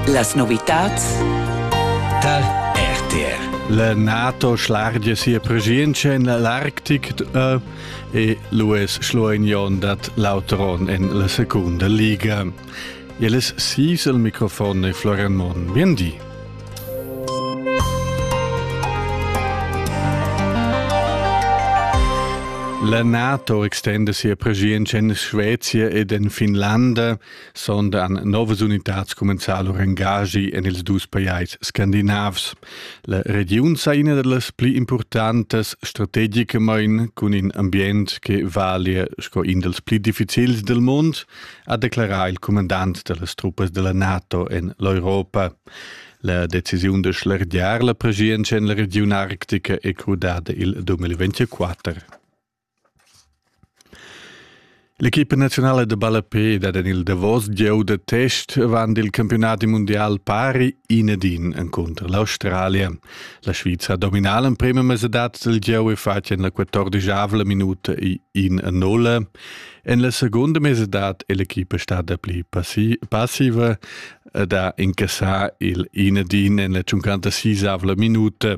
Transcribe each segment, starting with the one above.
Las novitads da RTR. La NATO schlargia sia preschientscha en l'Arctic e l'US schluagnon dat l'auteron en la secunda liga. Jelis sis al microfon e Florian Mon. Bien di. La NATO extenda sia preschientscha en Svezia ed en Finlanda sondan novas unitats comenzar lur engagi en ils dus pajais scandinavs. La regiun sa ina da las pli importantas strategicamain cun in ambient che valia sco in dals pli difficils del mund, ha declarà il comandant da las truppas della NATO en l'Europa. La decisiun de schlergiar la pregienza en la regiun arctica è crudada il 2024. L'equipa naziunala da ballape dat en il davos gieu da test avant il campiunadi mundial pari in ed in encunter l'Australia. La Svizra ha dominà l'emprima mesadad del gieu e fatg en la quattordischavla minuta in a nulla. En la segunda mesadad è l'equipa stada pli passiva ed ha incassà il in ed in en la 56 minuta.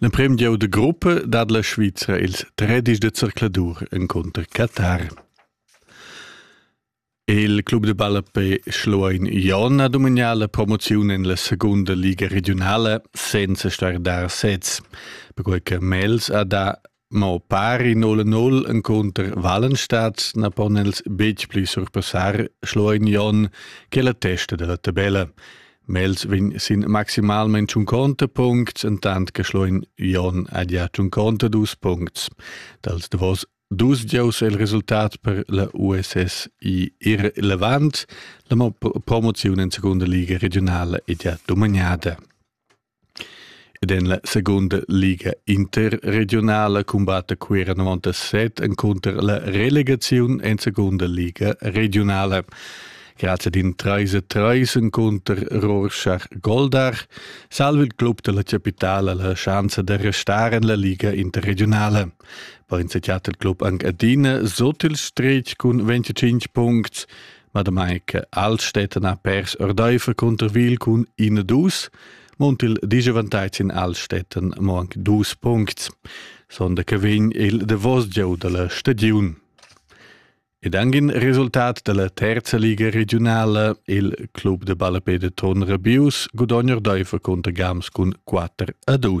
L'emprim gieu da gruppa dat la Svizra ils tredisch da zercladur encunter Qatar. Il club de ballapé Schluein Jon ha domignà la promoziun en la segunda liga regionala senza star dar sez, perquai che Mels ha dà ma pari null null encunter Wallenstadt na pon els betg pli surpassar Schloignon che la testa della tabella. Mels vin sin maximalmente un contepunkt, entant che Schloignon ha già un contadus puncts. Dals davos dus giaus è il resultat per la USS I irrelevant. La promozione in seconda liga regionale è già dominata. Ed en la segunda liga interregiunala cumbatta Cuera 97 encunter la relegaziun en segunda liga regiunala. Grazie ad in 3-3 encunter Rorschach-Goldach salva il club della capitala la chance da restare en la liga interregionale. Poi insegnat il club anche adina sot il stretg cun 25 punti Madamai che Altstätten ha pers ordeifer Cunterwil cun in dus, munt il digevantaits in Altstätten mo anc dus puncts, sonda che vegn il davos gieu dalla stagiun. Ed anche in resultat della terza liga regionale, il club de ballapede Ton Rabius gudogna ordeifer conter Gams cun 4 a 2.